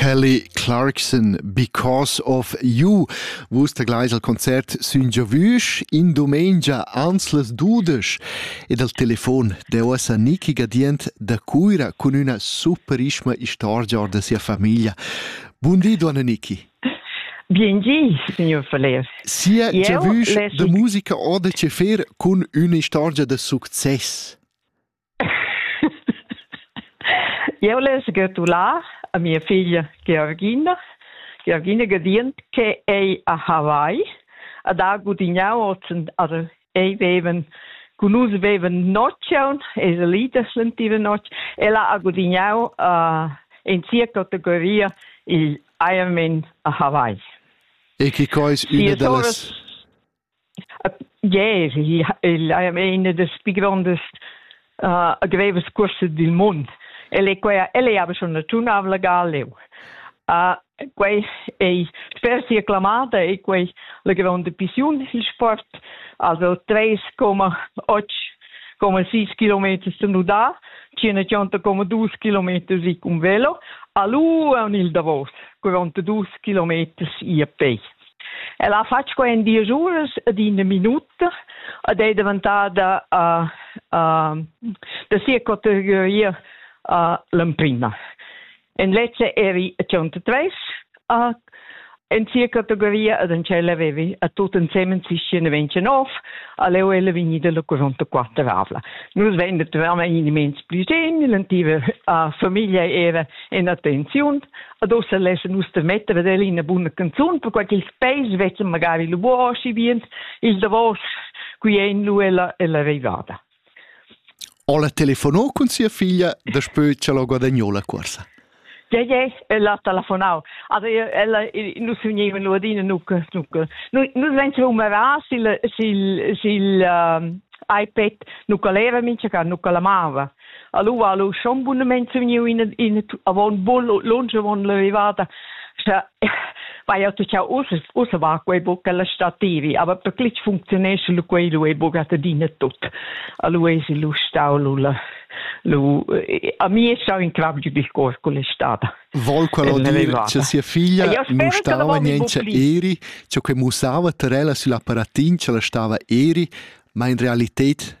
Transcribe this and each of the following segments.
Kelly Clarkson Because of You. Vus tegleis al concert sün giavüsch in dumengia ans las dudesch ed al telefon de uossa Niki Gadient da Cuira cun üna superisma istorgia da sia famiglia. Bun di, Duanna Niki. Biengi, signor Faller. Sia giavüsch de musica ode che fer cun üna istorgia de success. Eu l'he sgötulà a mia figlia Georgina, Georgina Gadient, che ei a Hawaii, ad ha gudignau ozzen, also ei veven cun nus veven noccion, ei salida slentiva notg, ella ha gudignau uh, in sia categoria il Ironman a Hawaii. E che quai es üna da las Yeah, il è das più grandes uh, grevas curses del mund. El è quella, el è aber schon naziunal legal leu. Uh, quei ei sper sia clamada e quei la grande pissiun il sport, also 3,8,6 km stanudà, 100,2 km i con velo, a lu un il Davos, 42 km i a pei. El ha fatg quei en diesch uras ed ina minuta ed ei daventada uh, uh, da sia categoria uh, l'emprima. En lezza eri a 103 uh, en sia categoria ed en tschella avevi a tut ensemen 29 allora ella vegni dalla 44 avla. Nus vein naturalmente immens pli genil, la tiva uh, famiglia era en attenziun, adossa lessa nus de metter ad el ina buna canzun, perquai ch'ils peis vezzan magari lu buoschi bien, il davos qui ein lu ella ella arrivada. Ho la telefonò cun sia figlia daspö cha l'ho guadagnou la cuorsa? Ja, ja, ella ha telefonau. Also ella nus vegnevan lu adina nucca, nucca. Nus vegnevan umerà sil sil sil uh, iPad nucca leva mincha ca nucca la mava. Allo, allo, schon bunamente vegniu in, in avon bol lunsch avon la vivada. Scha, vaia tu cha ussa, ussa va quei buc alla stativi, aber per clic funzionesce lu quei lu e buca adina tut. Allo es lu stau lu la lu a mi è stau in crab giù di cor con l'estate. Vol quello dire che sia figlia mustava niente eri, ciò che musava terella sull'apparatin ce la stava eri, ma in realità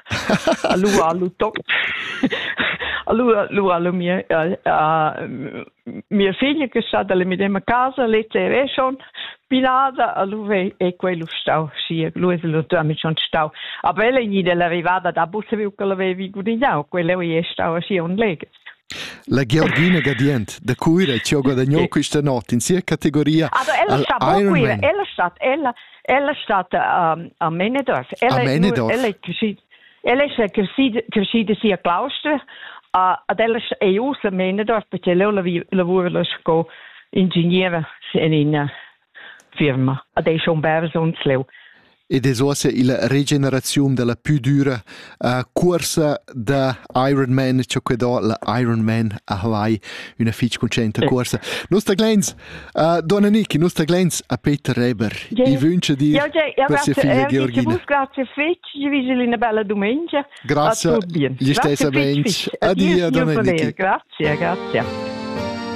Allura lu toc. Allura lura lu mia mia figlia che sa dalla medema casa lezza e reschon pilada allura è quello stau schi lui è lu amic schon stau aber ella è gnida l'arrivada da bus viu che l'avevi gudignau quella è stau schi un leg La Georgina Gadient da Cuira chi ho guadagno quista not in sia categoria Ah, ella sta bo Iron Quira, Man. ella stat ella ella stat um, a Menedorf. Ella A Menedorf. Ella è crescida ella è crescida crescida sia claustra a ad ella sta- è usa a Menedorf perché lei lavi- lavora la sco ingegnere in in firma. Ad ei schon bersons leu. Ed es uossa illa regeneraziun da la pü düra uh, cuorsa da Ironman, cha que do la Ironman a Hawaii, üna fich concenta cuorsa. Nosta Glens, uh, donna Niki, nosta Glens a Peter Reber, i vünce dir per sia figlia Georgina. Io grazie fich, gli vige una bella domenica. Grazie, gli stessamente. Adieu, donna Niki. Grazie, grazie.